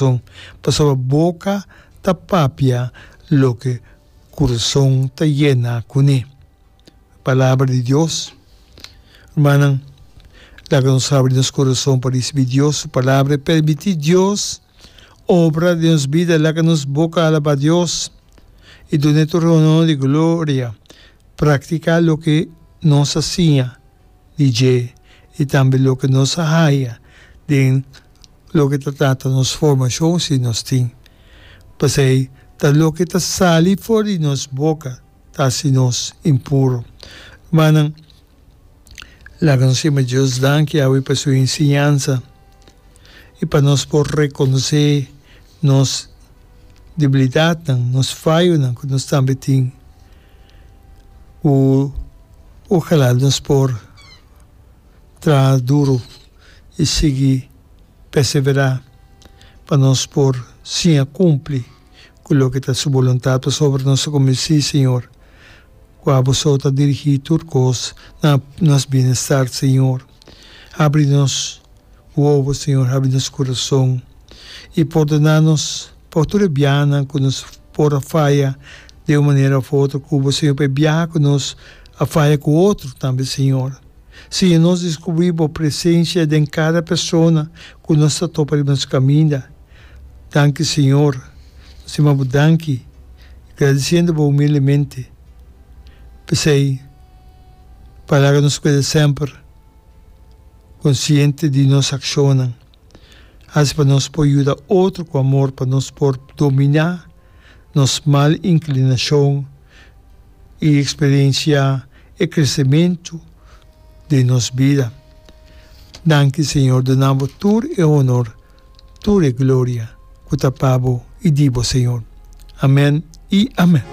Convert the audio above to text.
corazon, pasobra boca ta papia loke curuson ta yena cune. Palabra di Dios. Rumannan, laga nos habri nos corazon pa ricibi Dios su Palabra i permiti Dios obra den nos bida. Laga nos boca alaba Dios i dun'E tur honor i gloria. Practica loke nos a siña di dje i tambe loke nos a haya den. loke ta trata nos formashon si nos tin. P'esei, ta loke ta sali for di nos boka ta hasi nos impuro. Rumannan, laga nos yama Dios danki awe pa su enseñansa i pa nos por rekonosé nos debilidatnan, nos fayonan ku nos tambe tin, ku ojalá nos por traha duru. i sigui perseverá pa nos por siña kumpli ku loke ta Su boluntat pasobra nos ta konvensí, Señor, ku abo so ta dirigí tur kos na nos bienestar, Señor. Habri nos wowo, Señor, habri nos kurason i pordoná nos pa tur e biahanan ku nos por a faya den un manera òf otro ku Bo, Señor, pa e biaha ku nos a faya ku otro tambe, Señor. Señor nos descubri bo presencia den cada persona cu nos ta topa riba nos caminda. Danki Señor. Nos stima bo danki y gradiciendo bo humildemente. P'esey palabra nos cueda semper consciente di nos accionnan. Hasi pa nos por yuda otro ku amor pa nos por dominá nos mal inklinashon i eksperensiá e kresementu den nos bida. Danki, Señor, duna Bo tur e honor, tur e gloria ku ta pa Bo i di Bo, Señor. Amèn i amèn.